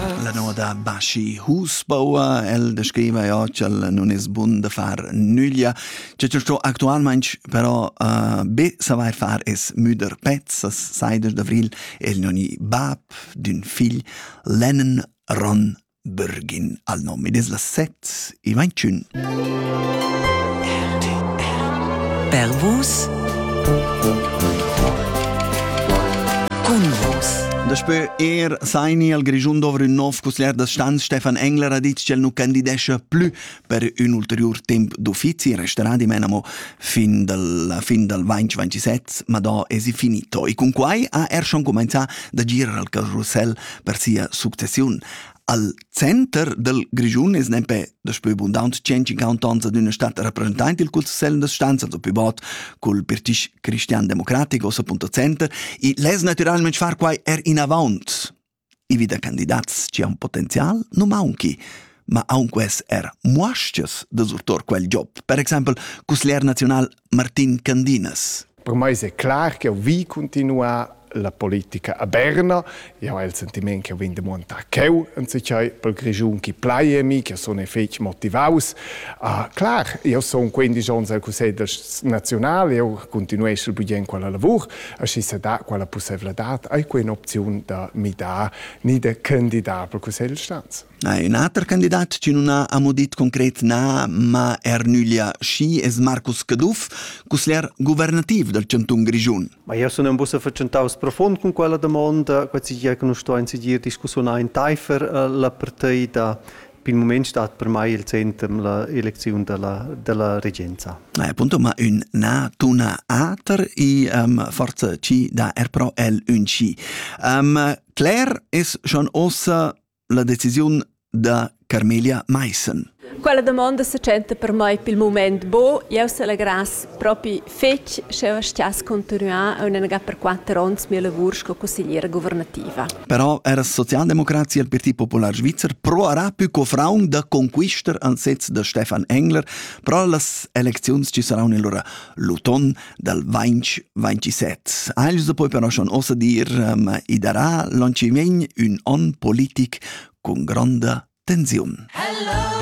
La noda Baschi Husbauer, el descriva ja ch'el nun es bun da far nüglia. Che sto sto actualmaing però uh, be savair far es müder pezs, as sai des d'avril el non i bab d'ün figl, Lennon Ron Bergin al nom. Ed es la set e vain tschun. Per vus Daspö er saini al Grischun dovr ün nov cusglier da stanz Stefan Engler ha dit ch'el nu candidescha plü per ün ulteriur temp d'uffizi restarà dimenamo fin dal fin dal 2027, ma da es finito. E cun quai ha er schon cumenzà da girar al Carousel per sia successiun. Al Center dal Grischun es nempe daspö bundant 150 ans ad üna stat rappresentaint il Cussegl das Stanzas, o pü bod cul Pirtisch cristian-democratic, ossa.center, e less natüralment far quai er inavaunt. I vi da candidats chi han potenzial nu maunchi, ma aunque es er muaschas da surtor quel job, per exaimpel cusglier naziunal Martin Candinas. Per mai è clar che jau vi cuntinuar la politica a Berna. Jau hai il sentiment che jau vegn demuentà cheu entschei pel Grischun chi plai a mi, che sun fetg motivaus. Ah, clar, io sun quindici onns al Cussegl naziunal, io continueschel bugien quella lavur, aschi se dà quella pussevladad, hai quell'opziun da mi da ni da candidat pel Cussegl Staats. Ha ün ater candidat chi nun ha amo dit concret na, ma er nüglia schi, es Marcus Caduff, cusglier guvernativ dal chantun Grischun. Ma jau sun ambus fatschentaus profund cun quella damonda, quai tgi che nus stuain seguir discussiunà entaifer la partei da pil mument stat per mai il center la elecziun della, della regenza. Ah, appunto, ma un na tuna ater i um, forza ci da er pro el un ci. Um, Claire es schon ossa la decisiun da Carmelia Meissen. Quella domanda se tschenta per mai pel moment bo, eu se la grass propi fetg, sche eu stiass continuar un enega per quatter ons mia lavur sco consigliera governativa. Però era Sozialdemokratie al Parti Popular Svizzer proarà più cofraun da conquistar ansets da Stefan Engler pro las elecziuns ci saran allora l'uton dal 2027. Eil se poi però schon ossa dir, um, i darà l'oncimien ün on politic con gronda tensiun. Hello!